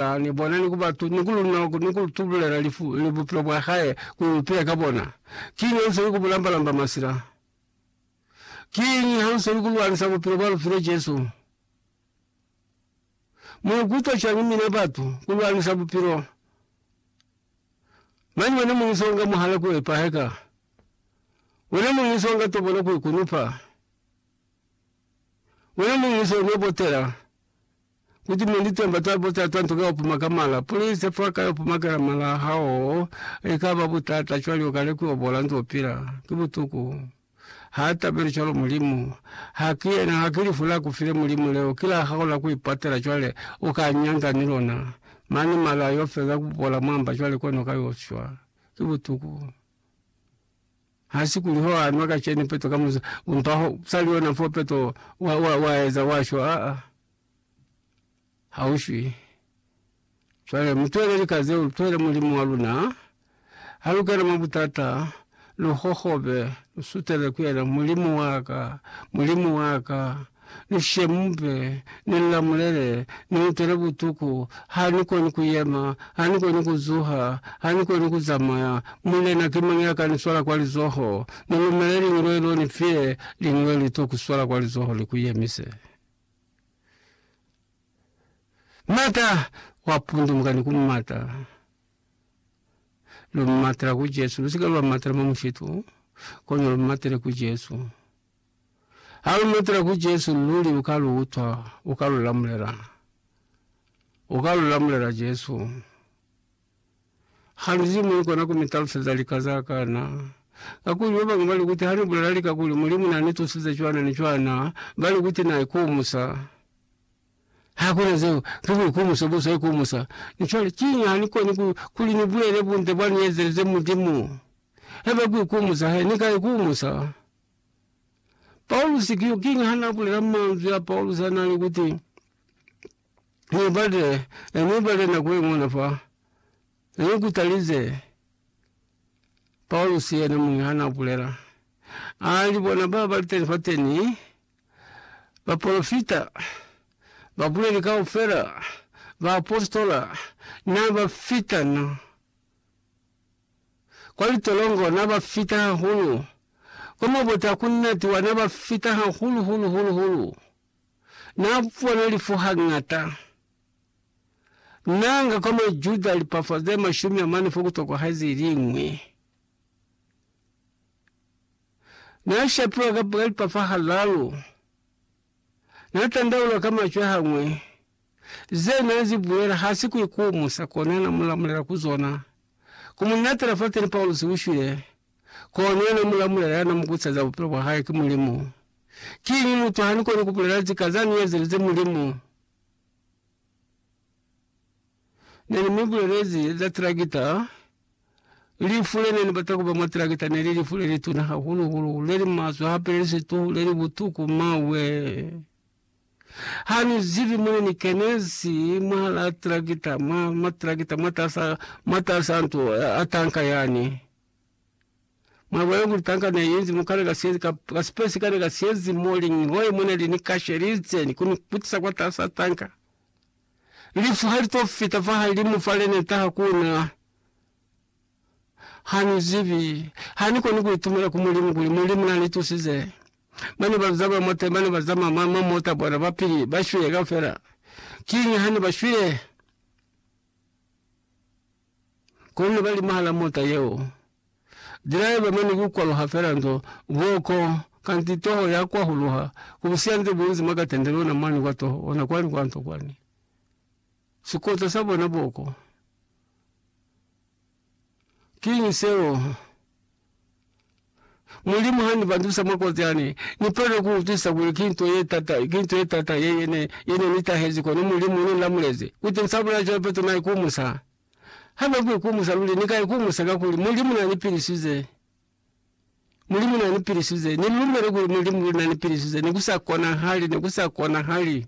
Ba ni bona ni ku ba tu, ni ku luna, ni ku tubulela lifu, ni bupilo bwa hae, ku ipea ka bona. Kiñi ha u seli ku bu lamba-lamba masila? Kiñi ha u seli ku lwanisa bupilo bwa lu file Jesu? Mu ikutwa cwañi mina batu, ku lwanisa bupilo? Mani wena muñi so nga muhala ku epahe ka? Wena muñi so nga tobona ku ikunupa? Wena muñi so no botela? Kuti mwa litemba za butata nto ka upuma ka mala, puli ize fa ka yo pumakela mala a hao, i ka ba butata cwale u ka lekuobola nzo pila. Ki butuku. Ha tabeli cwalo Mulimu. Ha ki yena, ha ki lifu la ku file Mulimu leo, ki la hao la ku ipatela cwale, u ka nyanga ni lona. Mane mala a yo feza ku bola mwamba cwale kono ka yo shwa. Ki butuku. Ha si kuli ho a nwa ka cene peto ka musa, umpa ho sali yona fo peto wa, wa, wa eza wa shwa. Aa, ha u shwi. Cwale mutwele lika zeo, lutwele Mulimu wa luna. Ha lu kena mwa butata, lu hohobe, lu sutele ku yena, Mulimu wa ka, Mulimu wa ka! Ni shemupe, ni nlamulele, ni utele butuku, ha ni koni ku yema, ha ni koni ku zuha, ha ni koni ku zamaya, Mulena ki mañi ya ka ni swala kwa lizoho? Ni lumele lingwe lo ni file, lingwe li to ku swala kwa lizoho li ku yemise. Mata wa pundumuka ni ku mata. Lu matela ku Jesu, lu si ke lwa matela mwa mushitu, kono lu matele ku Jesu. Ha lu lutela ku Jesu, luli u ka lu utwa, u ka lu lamulela. U ka lu lamulela Jesu. Ha lu zimwi kona ku mi taluseza lika za ka na. Kakuli ba bañwi ba li kuti ha ni bulela lika kuli Mulimu na ni tusize cwana ni cwana, ba li kuti na ikumusa. Ha ku na zeo, ki buikumuso bo sa ikumusa. Mi cwale, kiñi ha ni koni ku, kuli ni bulele bunte bwa ni ezelize Mulimu? Haiba ku ikumusa, he ni ka ikumusa. Paulusi ki yo kiñi ha n'a bulela manzwi a Paulusi a n'a li kuti, Ni bale, ni bale nako ye ñuna fa? Ni ku talize. Paulusi yena muñi ha n'a bulela, a li, Bona ba ba li teni fateni, bapolofita, babuleli kaufela, baapositola, n'a ba fita na. Kwa litolongo na ba fita hahulu, kwa mabota ku natiwa na ba fita hahulu hulu hulu hulu. Na bona lifu hañata. Na nga kwa Majuda lipafo ze mashumi amane fo ku tokwahezi iliñwi. Na shapiwa ka lipafo halalu. Na tandaula ka macwe hañwe, ze na zi bulela ha si ku ikumusa, kona na mu lamulela ku zona. Ku mu natela fateni Paulusi u shwile, kona na mu lamulela ya na mu kusa za bupilo bwa hae ki Mulimu. Kiñi mutu ha ni koni ku bulela zika za ni ezelize Mulimu? Ne ni mi bulelezi za trakita. Lifu le ne ni bata ku ba mwa trakita ne li lifu le lituna hahulu-hulu, le li maswe hape le li situhu, le li butuku. Mawe! Ha ni zibi mo ne ni kenezi mwahalaa trakita, mwa, mwa trakita, mwatas'a, mwatas'a nto a tanka yani. Mwa lubali luli tanka ne yenzi mo kane ka sienzi ka, ka space kane ka sienzi mo lingi hoye mone li ni kashe li itseni kuni kutisa kwa tasa tanka. Lifu hali to fita fa halimu fa lene taha kuna. Hani zibi, hani koni ku itumela ku Mulimu kuli Mulimu na ni tusize. Bane ba zama mo te, bane ba zama ma, ma mota bona ba pili, ba shwile kaufela. Kinyi hani ba shwile? Kono ba limahala mota yeo. Dilaiva mane ku kwaluha fela nto boko, kanti toho ya kwahuluha, ku busiya nde bunzi mwa katende lona mwani kwa toho, ona kwani kwa nto kwani. Sikota sa bona boko. Kiñi seo? Mulimu ha ni bandusa mwa koti ha ne ni palelwe ku utwisisa kuli ki nto ye tata, ki nto ye tata ye ye ne, ye ne ni tahezi, kono Mulimu ne ni lamulezi ku timusa bulai cwale Petro na ikumusa. Ha be ku ikumusa luli, ni ka ikumusa kakuli Mulimu na ni pilisize. Mulimu na ni pilisize. Ni lumele kuli Mulimu luli na ni pilisize. Ne ku sa konahali, ne ku sa konahali.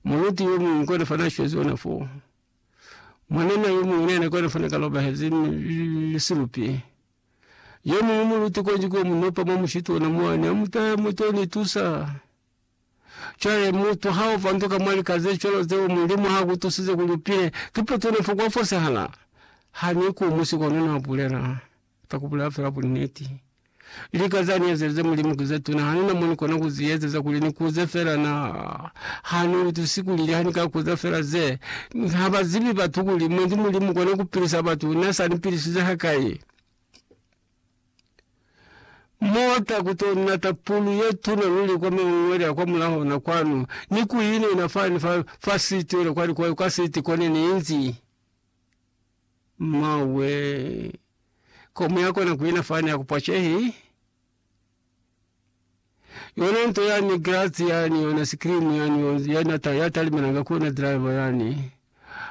Mulunti yo muñwi kona fa na shwezi ona foo. Mwanana yomuñwi nena kona fana kalobahezi ni silupi. Yomuñwi muluti kwenji kuwa munopa mwa mushitu ona mwane amutaya muto ni tusa. Chwale mutu hao vanduka mwa likaze cholo zeo mulimu ha kutusize kulupile kipeto nefo kwa fosehala. Hani ku musiko nona bulela. Ka ku bulela fela bunniti, lika za ni ezelize Mulimu ki ze tuna hane na moni kona ku zi ezeza kuli ni kuze fela. Na ha ni utusi kuli niha ni ka kuza fela ze, ha ba zibi batu kuli mwendi Mulimu kona ku pilisa batu, na sa ni pilisize hakai. Mo ta ku to nata pulu ye tuna luli kwa maungwele a kwa mulaho na kwanu, ni ku inena fani fa, fa siti yono kwa likwayo, kwa siti kone ni inzi. Mauwe. Komu ya kona kuina fani ya kupwa chehi. Yona nto yani grati yani yona sikrimu yani yona yana ta ya talimana nga kona driver yani.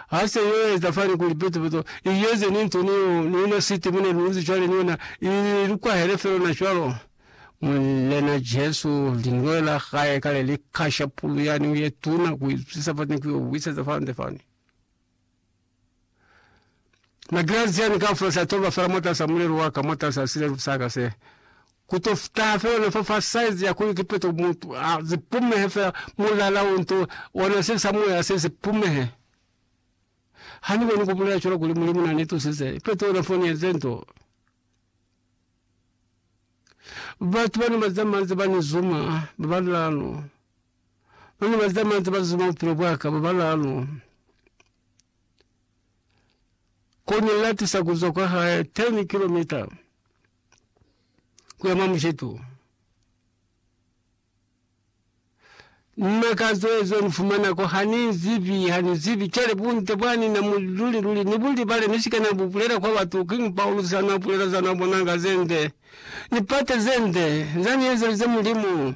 Hasa yoye zafani kuli peto peto iyeze ni nto niyo nina siti mune luzi chwale nina ili lukwa hele felo na chwalo. Mulena Jesu linwela khaye kale likasha pulu yani uye tuna kuizisa fani kuyo wisa zafani zafani. Madrazi jani kaufela sa toba fela mwatasa mulelo waka mwatasa silevu saka se kuto futaha fela ona fa fa size ya kuli kipeto mutu a zipumehe fela mulala unto ona se sa moya se zipumehe hani koni kubulela chola kuli mulimu nani tusize ipeto ona foni enze nto batu bani baza manzi bani zuma baba lilano. Ba ne ba litamanzi ba zuma bupilo bwa ka ba balaalu. Ko ne ni latisa ku zwa kwa hae 10 kilomita ku ya mwa mushetu. Nna ka zwezwe ni fumana ko ha ni zibi, ha ni zibi kele bunte bwa ni na mu luli luli ni bu libale ni si ka na bu bulela kwa batu. Kiñi Paulusi ha na bulela za na bonanga ze nde, lipate ze nde za ni ezelize Mulimu?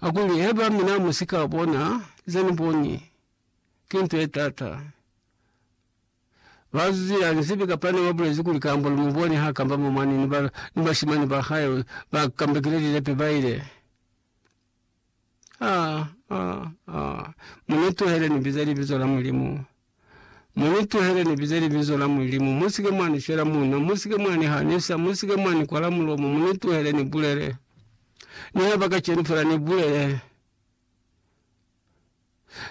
Akuli, Haiba mina musika bona zeni boni, ki nto ye taata. Ba zuzila nzibi kapa ne ba bulezi kuli kamba lu mu boni ha kamba mwa mwaneni ba, ni bashimani ba hae ba kambekile lilepe ba ile. Ha, ha, ha! Mu ni tuhele ni biza libizo la Mulimu. Mu ni tuhele ni bize libizo la Mulimu. Mu sike mwa ni fela munwe. Mu sike mwa ni hanisa. Mu sike mwa ni kwala mulomo. Mu ni tuhele ni bulele. Nihaiba kacenu fela ni bulele.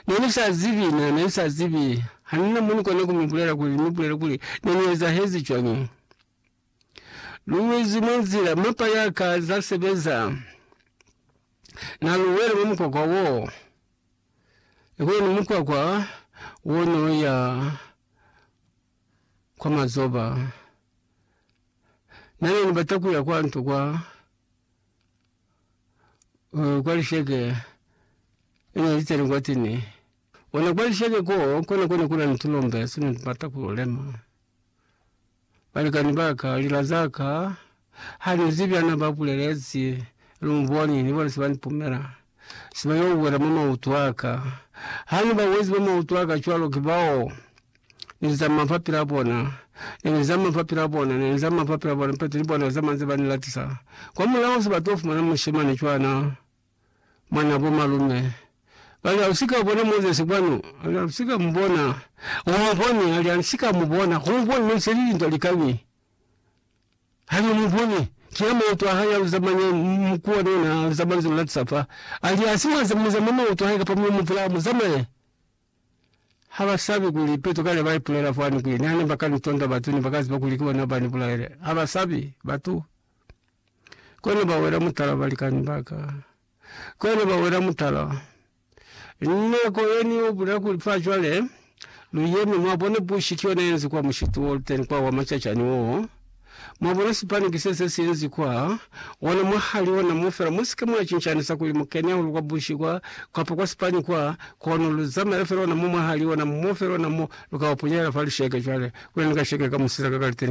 Ne ni sa zibi, ne, ne ni sa zibi. Ha ni na mo ni kona ku mi bulela kuli, ni bulele kuli, ne ni ezahezi cwañi. Lu wezi mwa nzila, mapa ya ka za sebeza. Na lu wele mwa mukwakwa wo. Ikoloni mukwakwa wo no ya kwa mazoba. Na ne ni bata ku ya kwa nto kwa, uh, kwa lisheke e ne li teni kwateni. Ona kwa lisheke koo, kona ko ne ku na ni tulombe se ne tu bata ku lo lema. Balikani ba ka, lila za ka, ha ni zibi ha na ba bulelezi, lu mboni, ni bona se ba ni pumela. Se ba yo wela mwa mautu a ka. Ha ni ba wezi mwa mautu a ka cwalo, ki bao Ni zama fa pila bona. Ne ni zama fa pila bona, ne ni zama fa pila bona, pete ni bona zama nze ba ni latisa. Kwa mulaho se ba to fumana mushemani cwana. Mwana bo malume bali, Hausika bona Moses kwanu? Ali, Hausika mubona. Umuboni? Ali, Hansika mubona. Kumuboni mane seli lintwa likañi? Ali, Umuboni. Kina mautu ahae aluza mane, mukuwa nona aluza manzulu latisa fa. Ali, Hasi mwaza muzama mautu ahae kapa myo muvulaha muzamaye? Ha ba sabi kuli Petro kale ba ipulela fani kuli nihane ba ka ni tonda batu, ne ba ka ziba kuli ki bona ba ni bulaele. Ha ba sabi batu. Kono ba wela mutala, balikani ba ka. Kono ba wela mutala. Nako ye ni yo bulela kuli fa cwale lu yemi, mwabona, bushi ki yona ye nzi kwa mushitu wo lu teni kwa wa macacani woo. Mwa bona sipani ki se se sinzi kwa ona mwa hali ona mo fela. Mu sike mwa cincanisa kuli mu kene hahulu kwa bushi kwa, kapa kwa sipani kwa, kono lu zamaela fela ona mo mwa hali ona mo fela ona mo lu ka ba punyahela fa lisheke. Cwale, kuli ni ka shekeka musisa ka kaliteni.